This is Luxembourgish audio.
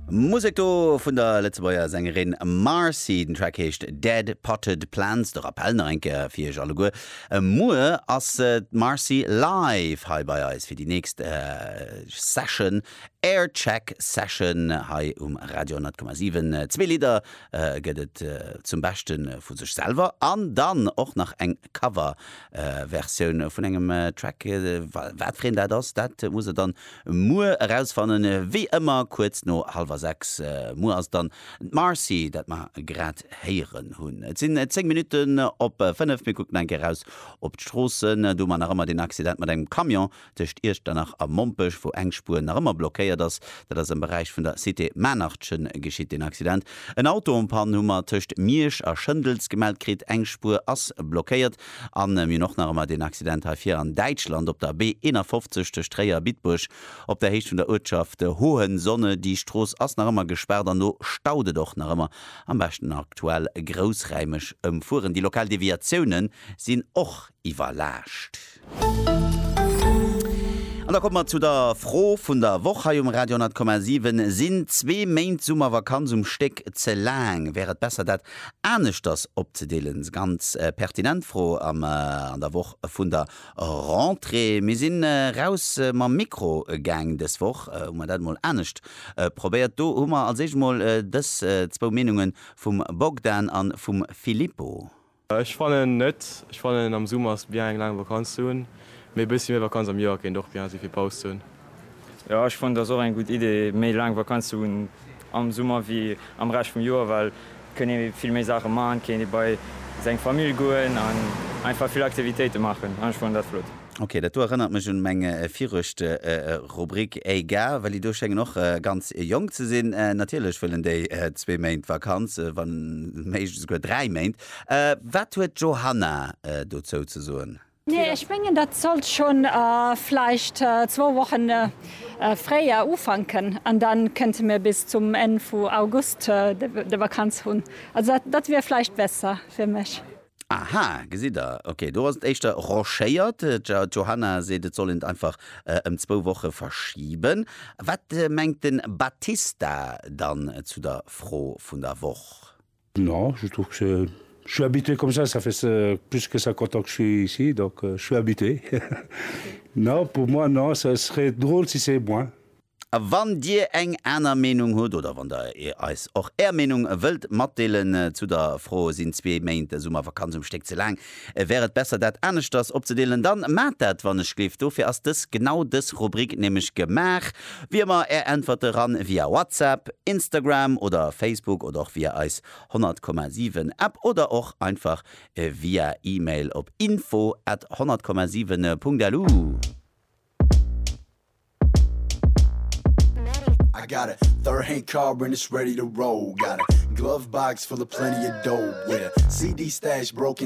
Musek do vun der Lëtzebuerger Sängerin Marcy. Den Track heescht Dead Potted Plants. De Rappell nach eng Kéier fir Iech alleguer, Muer ass d'Marcy live hei bei eis fir déi nächst Session, Aircheck Session hei um Radio 100,7. Zwee Lidder gëtt et zum Beschte vu sech selwer an dann och nach eng Coverversioun vun engem Track. Wat fir een dat ass, dat muss Der dann Muer erausfannen, wéi ëmmer kuerz no hallwer sechs. Muer ass dann d'Marcy, dat mer grad héieren hunn. Et sinn zéng Minutten op fënnef. Mir kucken eng Kéier eraus op d'Stroossen. Do hu mer nach ëmmer deen Accident mat engem Camion tëscht Iechternach a Mompech, wou eng Spuer nach ëmmer blockéiert ass. Dat ass am Beräich vun der Cité Maarnachchen geschitt, deen Accident. En Autopann hu mer tëscht Miersch a Schëndels gemellt kritt. Eng Spuer ass blockéiert. A mir hunn och nach ëmmer deen Accident hei vir an Däitschland op der B 51 tëscht Tréier a Bitburg op der Héicht vun der Uertschaft Hohensohne. Déi Strooss ass nach ëmmer gespaart an do staut et och nach ëmmer. Am beschten aktuell groussräimeg ëmfueren. Déi lokal Deviatioune sinn och iwwerlaascht. An da komme mer zu der Fro vun der Woch hei um Radio 10,7, Sinn zwee Méint Summervakanz um Stéck ze laang? Wär et besser dat aneschters opzedeelen. Ganz pertinent Fro an der Woch vun der Rentrée. Mir sinn raus mam Mikro gaang. Dës Woch hu mer dat emol anescht probéiert. Do hu mer als éischt emol dës zwou Meenunge vum Bogdan a vum Filippo. Ech fannen net. Ech fannen am Summer ass bien eng laang Vakanz ze hunn, mee e bëssi méi Vakanz am Joer kéint och bien si fir Paus ze hunn. Jo ech fannen dass och eng gudd idee méi laang vakanz ze hun am summer wéi am rescht vum joer well kënn ee vill méi saachen maan, kéint ee bei seng famill goen an einfach vill aktivitéiten maachen an ech fannen dat flott. Ok dat do erënnert mech un meng viruecht rubrik egal well déi do schéngen och ganz jonk ze sinn natierlech wëllen déi zwee méint vakanz wann méiglech esouguer dräi méint wat huet d'johanna dozou ze soen? Nee, ech mengen dat sollt schonn vläicht zwou Woche fréier ufanken an da kënnte mir bis zum Enn vu August de Vakanz hunn. Also dat wier vläicht besser fir mech. Aha, gesitt der, ok, do ass et éischter rochéiert. D'Johanna seet et soll een et einfach ëm zwou Woche verschiben. Wat mengt de Battista dann zu der Fro vun der Woch? Non, je trouve que c'est, je suis habitué comme ça, ça fait plus que 50 ans que je suis ici, donc je suis habitué. Non, pour moi, non, ça serait drôle si c'est moins. A wann Dir eng aner Meenung hutt oder wann Der eis och Är Meenung wëllt matdeelen zu der Fro, Sinn zwee Méint Summervakanz um Stéck ze laang? Wär et besser dat aneschters opzedeelen, dann maat dat wann ech gleef. Dofir ass dës genau dës Rubrik nämlech gemaach. Wéi ëmmer är Äntwerte ran via WhatsApp, Instagram oder Facebook oder och via eis 100,7 App oder och einfach via Email op info at 100,7.lu. I got a third hand car and it's ready to roll got a glove box full of plenty of dough yeah CD stash broken